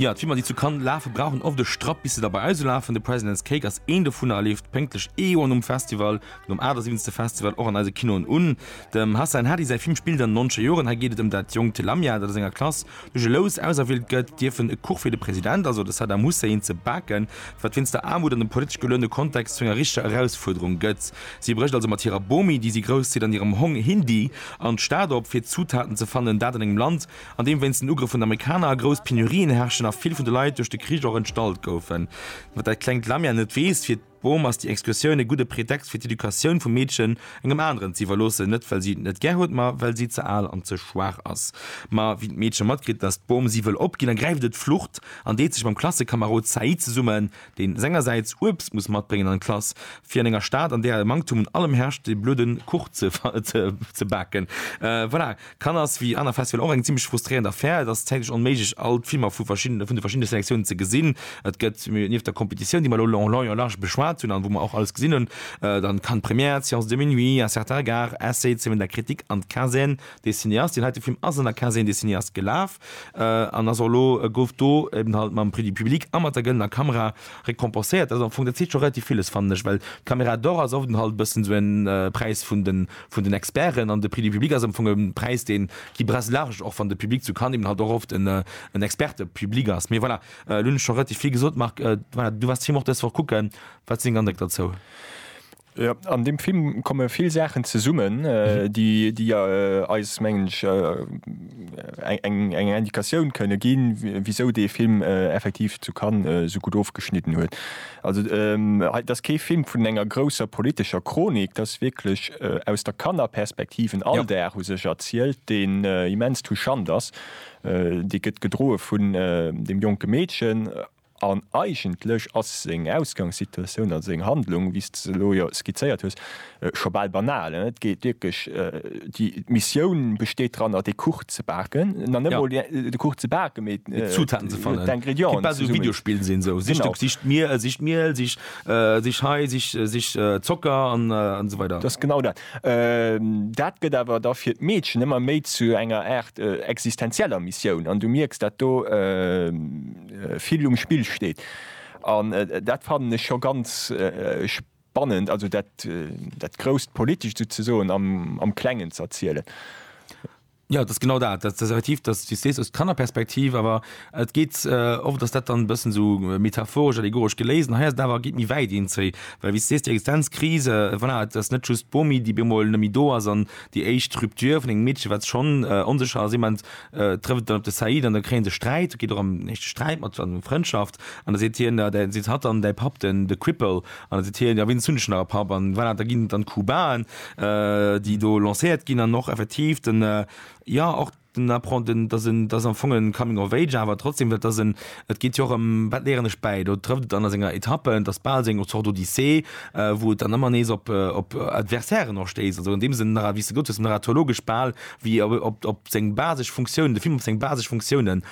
Jo, d'Filmer déi zu Cannes lafen brauchen oft e Strapp bis se da bei eis ulafen. The President's Cake ass een dovunner a leeft pénktlech ee Joer nom Festival, nom 78. Festival, och an eise Kinoen un. Dem Hassan Hadi säi Film spillt an 90er Joren. Hei geet et ëm dat jonkt Lamia, dat a senger Klass duerch e Lous auserwielt gëtt, dierf en e Kuch fir de President, also de Saddam Hussein, ze baken, wat wéinst der Aarmut an dem politesch geluene Kontext zu enger richtger Erausfuerderung gëtt. Si brécht also mat hirer Bomi, déi si grousszitt, an hirem Hong Hindi an d'Stad op, fir Zutaten ze fannen, dat an engem Land, an deem wéinst den Ugrëff vun den Amerikaner grouss Penurien herrschen a vill vun de Leit duerch de Krich och entstallt goufen. Wat dat klengt Lamia net weess, Fir d'Bom ass déi Excursioun e gudde Pretext fir d'Educatioun vum Meedchen engem aneren ze iwwerloossen, net well si et net gär huet, ma well si ze al an ze schwaach ass. Ma wéi d'Meedche matkritt, datt d'Bom si wëll opginn, ergräift et d'Flucht an deet sech mam Klassekamarod Said zesummen, deen sengersäits Uebst muss matbréngen an d'Klass, fir an enger Stad, an där e Manktum un allem herrscht, de blöde Kuch ze baken. Voilà. Cannes ass wéi aner Festivaler och eng zimlech frustréierend Affär. Et ass zäitlech onméiglech all d'Filmer vu de verschiddene Selektiounen ze gesinn. Et gëtt, nieft der Competitioun, déi mer elo en long et en large beschwat hunn an wou mer och alles gesinn hunn, dann d'Cannes Première, d'Séance de minuit, un certain regard, Essai, d'Semaine de la critique an d'Quinzaine des cinéastes. Deen heite Film ass an der Quinzaine des cinéastes gelaf an ass och elo, gouf do eben halt mam Prix du public a mat der gëllener Kamera récompenséiert. Dat ass am Fong, dat seet scho relativ villes, fannen ech, well d'Caméra d'Or ass oft eben halt e bëssen esou e Präis vun de vun den Experten an de Prix du public ass am Fong e Präis deen qui brasse large, och wann de Public zu Cannes eben halt och oft en Experte-Public ass. Mee voilà, elo hunn ech scho relativ vill gesot. Marc, voilà, du waars de Film och dës Woch kucken, wat sinn deng Andréck derzou? Jo, an deem Film komme vill Saachen zesummen, déi eis, mengen ech, eng Indikatioun kënne ginn, wisou dee Film effektiv zu Cannes esou gutt ofgeschnidden huet. Also et ass kee Film vun enger grousser politescher Chronik, et ass wierklech aus der Kannerperspektiv en Alldag u sech erzielt, deen immens touchant ass. Dee gëtt gedroe vun deem jonke Meedchen an eigentlech ass seng Ausgangssituatioun, also seng Handlung, wéi s de se elo jo skizzéiert hues, Scho bal banal, et geet wierklech, d'Missioun besteet dranner dee Kuch ze baken, nach net emol de Kuch ze baken, mee d'Zutaten ze fannen, d'Ingrédienten ze summen. Kéint bal esou e Videospill sinn, esou sich do, sich d'Miel, sich d'Miel, sich, sich hei, sich, sich Zocker an esou weider. Et ass genau dat. Dat gëtt awer da fir d'Meedchen ëmmer méi zu enger Aart existenzieller Missioun an du mierks, dat do vill um Spill steet an dat fannen ech scho ganz Bannent, also dat, dat grousst Politescht souzesoen am, am Klengen ze erzielen. Jo, et ass genau dat. Dat ass effektiv, dass s du sees aus d'Kannerperspektiv, awer et geet oft, dass dat dann e bëssen esou metaphoresch, allegoresch geléist, an hei ass et awer, geet méi wäit eenzeé, well wéi s du sees, déi Existenzkrise, voilà, et ass net just d'Bomi, déi op eemol net méi do ass, an déi éischt Rupture vun engem Meedche wat schonn onsécher ass, ee Moment trëfft et dann op de Saïd an da kréie se Sträit, et geet och ëm éischte Sträit mat, an ëm Frëndschaft. An da seet hien, Jo, da seet hatt dann, Däi Papp, den, de Cripple. An da seet hien, Jo, wéinst hunn ech nach e Papp? An voilà, da ginn dann d'Kubaen, déi do lancéiert ginn, an och effektiv den, jo, och den Apprent-, den, dass en, dass am Fong e Coming of Age, awer trotzdem, dat ass en, et geet jo och ëm, Wat léieren ech bäi? Do trëfft et dann a senger Etappe, et ass bal esou eng Zort Odyssee, wou et dann ëmmer nees op, op Adversairen och stéisst. Also an deem Sënn nach, wéi s de gesot hues, narratologesch bal wéi op, op, op seng basesch Funktiounen, de Film op seng basesch Funktiounen.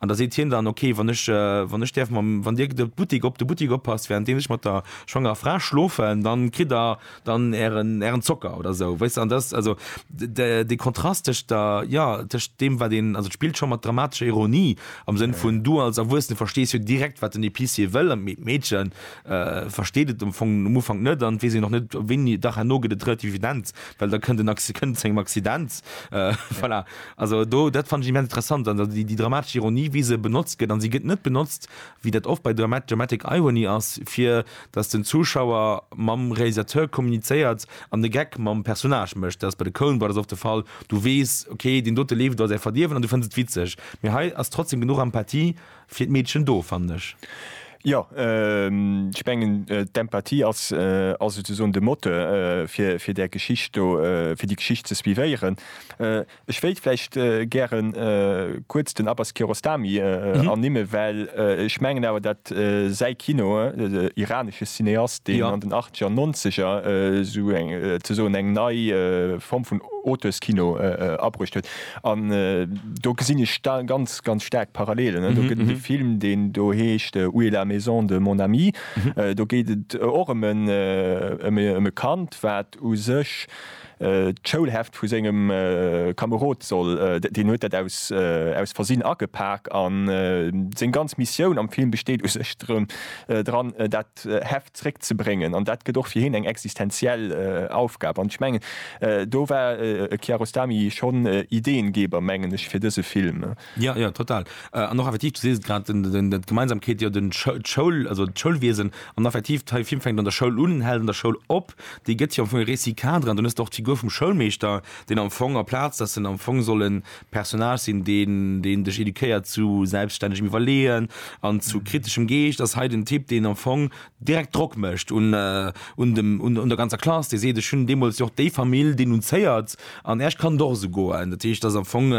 An da seet hien dann, Ok, wann ech, wann ech däerf mam, wann Dir de Buttik op de Buttik oppasst, währenddeems ech mat der schwangerer Fra schlofen, da kritt Der dann Ären, Ären Zocker oder esou. Weess de? An dat ass also de, dee Kontrast tëscht der, jo, tëscht deem, wat een, also et spillt scho mat dramatescher Ironie, am Sënn vun, du als Erwuessene verstees jo direkt, wat den Épicier wëll, mee d'Meedche versteet et am Fong um Ufank net an et weess een och net, wéini. Dach, herno gëtt et relativ evident, well da kënnt en, kënnt et zu engem Accident, voilà. Also do, dat fannen ech immens interessant an déi, déi dramatesch Ironie, wéi se benotzt gëtt. An se gëtt net benotzt, wéi dat oft bei Drama dramatic irony ass, fir datt den Zuschauer mam Realisateur kommunizéiert an de Gag mam Personnage mécht. Dat ass bei de Coen Brothers oft de Fall. Du weess, okay, deen dote leeft iwwer säi Verdierwen an du fënns et witzeg. Mee hei ass trotzdeem genuch Empathie Fir d'Meedchen do, fannen ech. Jo, ech mengen, d'Empathie ass souzesoen de Moteur fir där Geschicht do, fir déi Geschicht ze suivéieren. Ech wéilt vläicht gäre kuerz den Abbas Kiarostami ernimmen, well ech mengen awer, datt säi Kino, iranesche Cineast, deen an den Achtzeger an Nonzeger souzesoen eng nei Form vun Auteurskino abruecht huet, An do gesinn ech ganz ganz staark Parallelen. Do gëtt et e Film, deen do heescht Où est la maison de mon ami? Do geet et och ëm e Kand, wat u sech d'Schoulheft vu sengem Kamerod soll, deen huet dat aus Versinn agepak. A seng ganz Missioun am Film besteet u sech dran, dat d'Heft zréck ze bréngen. An dat gëtt och fir hien eng existenziell Aufgab. An ech mengen, do war e Kiarostami schonn Ideengeber, mengen ech, fir dëse Film. Jo, jo, total. An och effektiv, du sees et grad, d'Gemeinsamkeet, jo, d'Schoul, also d'Schoulwiesen. An effektiv, de Film fänkt an der Schoul un, hält an der Schoul op. Dee gëtt jo am Fong e Récit-cadre. An dunn hues de och d'Figur vum Schoulmeeschter, deen am Fong, amplaz datt en am Fong soll e Personnage sinn, deen deen dech eduquéiert zu selbststännegem Iwwerleeën an zu kriteschem Geescht, ass hei den Typ, deen am Fong direkt Drock mécht un un dem un un der ganzer Klass, dee seet, ech hunn deemools jo och déi Famill denunzéiert an Äerch kann et och esou goen. Dat heescht, et ass am Fong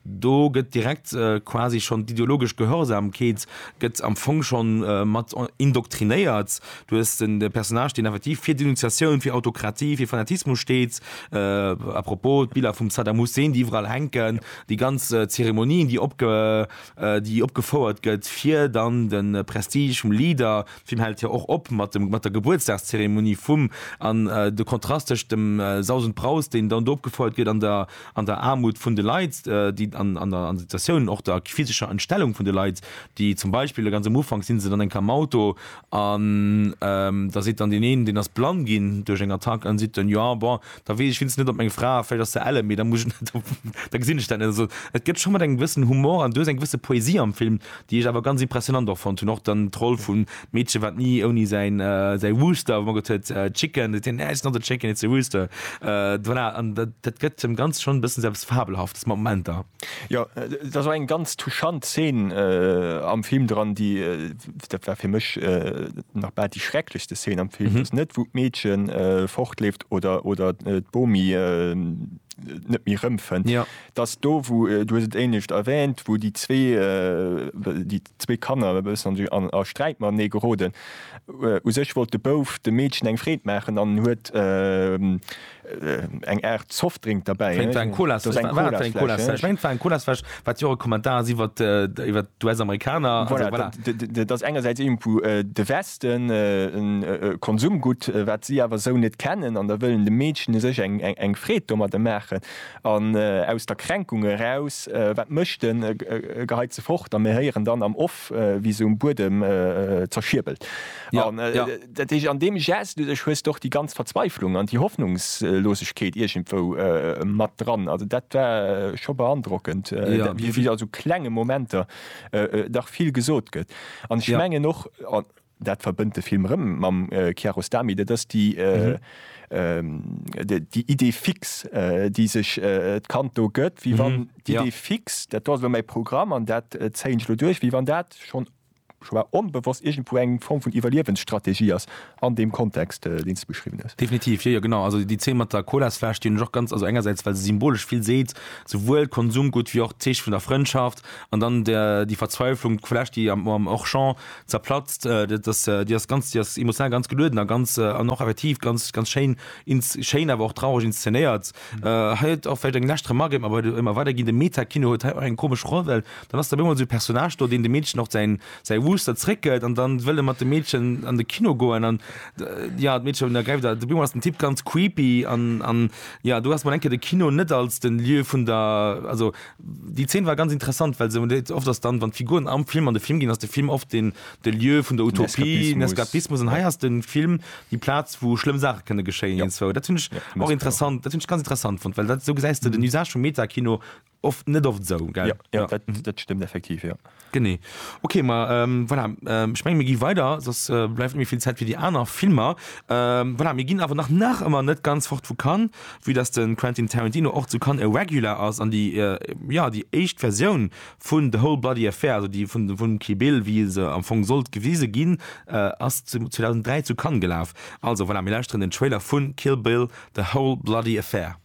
do gëtt direkt quasi schonn d'ideologesch Gehorsamkeet gëtt am Fong schonn mat indoktrinéiert. Du hues den Personnage, deen effektiv fir Denunziatioun, fir Autokratie, fir Fanatismus steet. A propos, d'Biller vum Saddam Hussein, déi iwwerall hänken, déi ganz Zeremonien, déi opge, déi opgefouert gëtt, fir dann de Prestige vum Leader, de Film hält jo och op mat dem, mat der Gebuertsdagszeremonie vum, an de Kontrast tëscht dem Saus und Braus, deen dann do opgefouert gëtt, an der, an der Aarmut vun de Leit, déi an, an der Situatioun och der physescher Entstellung vun de Leit, déi zum Beispill ganz am Ufank si se dann enk am Auto An da seet dann deen een, deen ass blann ginn duerch eng Attack, an seet dann, jo, bon, da weess ech wéinstens net, ob meng Fra, vläicht ass se elle, mee da muss ech net, da gesinn ech dat net. Also et gëtt scho mat engem gewëssen Humor an duerch eng gewësse Poesie am Film, déi ech awer ganz impressionant och fonnt hunn. Och dann d'Roll vum Meedche, wat ni ouni säin Rooster mageet huet, Chicken, seet hien, nä, it's not a chicken, it's a rooster. Voilà, an dat gëtt dem Ganze schonn e bëssen sou eppes Fabelhaftes mat Momenter. Jo, et ass och eng ganz touchant Zeen am Film dran, déi dat war fir mech äh, nach bal déi schrecklechste Szene am Film, mhm. dass net wou d'Meedchen äh, fortleeft oder, oder äh, d'Bomi äh, net méi rëmfënnt. Ja. Dass do wou äh, du et éinecht erwähnt, wou die zwee äh, die zwee Kanner an a Sträit mat nee geroden. Äh, u sech wollt de Bouf de Meedchen eng Freet maachen an huet äh, eng Art Softdrink derbäi. Eng Colasfläsch, wat jo e Kommentar ass iwwer d'US-Amerikaner. Voilà, dat ass engersäits iergendwou de Westen, e Konsumgutt, wat si awer esou net kennen an da wëllen de Meedchen u sech eng Freed domadder maachen an aus der Kränkung eraus, wat mécht en, e geheit se fort a mir héieren dann am Off, wéi se um Buedem zerschierbelt. Dat heescht, an deem Gest u sech hues de och déi ganz Verzweiflung an déi Hoffnungslosegkeet iergendwou mat dran. Also dat war scho beandrockend, wéi a sou klenge Momenter dach vill gesot gëtt. An ech mengen och, an dat verbënnt de Film erëm mam Kiarostami, dat ass déi Idée fixe, déi sech d'Kand do gëtt, wéi wann d'Idée fixe, dat do ass elo mäi Programm an dat zéien ech elo duerch, wéi wann dat schonn, schonn onbewosst iergendwou eng Form vun Iwwerliewensstrategie ass an deem Kontext, deen s de beschriwwen hues. Definitiv, jo jo, genau. Also déi Zeen mat der Colasfläsch, déi hunn ech och ganz, also engersäits well se symbolesch vill seet, souwuel d'Konsumgutt wéi och d'Zeeche vun der Frëndschaft an dann déi Verzweiflung, d'Fläsch, déi am Auchan zerplatzt, dat ass, déi ass ganz, déi ass emotional ganz gelueden a ganz, an och effektiv ganz, ganz schéin, schéin awer och traureg inszenéiert. Hei huet och vläicht eng lescht Remark, mä bei ëmmer weider ginn, de Meta-Kino huet hei och eng komesch Roll, well dann ass da op eemol esou e Personnage do, deen dem Meedchen och säin, säi Wooster zréckgëtt an dann wëll e mat dem Meedchen an de Kino goen an, jo, d'Meedchen ergräift a op eemol ass den Typ ganz creepy an, an, jo, do ass mol eng Kéier de Kino net als den Lieu vun der, also. Déi Zeen war ganz interessant, well se hunn et oft ass dann, wann d'Figuren am Film an de Film ginn, ass de Film oft den de Lieu vun der Utopie, den Eskapismus. An hei ass de Film déi Plaz, wou schlëmm Saache kënne geschéien. Jop. Iergendswou. Dat hunn ech Merci och interessant, dat hunn ech ganz interessant fonnt, well dat esou gesäis de den Usage vum Meta-Kino oft net oft esou, gell? Jo, jo, dat, dat stëmmt effektiv, jo. Genee. Ok, ma voilà, ech menge mir gi weider, soss bleift net méi vill Zäit fir déi aner Filmer. Voilà, mir ginn awer nach nach ëmmer net ganz fort vu Cannes, vue dass de Quentin Tarantino och zu Cannes e Regular ass an déi, jo, déi éischt Versioun vun The Whole Bloody Affair, also déi vun vum Kill Bill, wéi se am Fong sollt gewise ginn, ass 2003 zu Cannes gelaf. Also voilà, mir lauschteren den Trailer vu Kill Bill, The Whole Bloody Affair.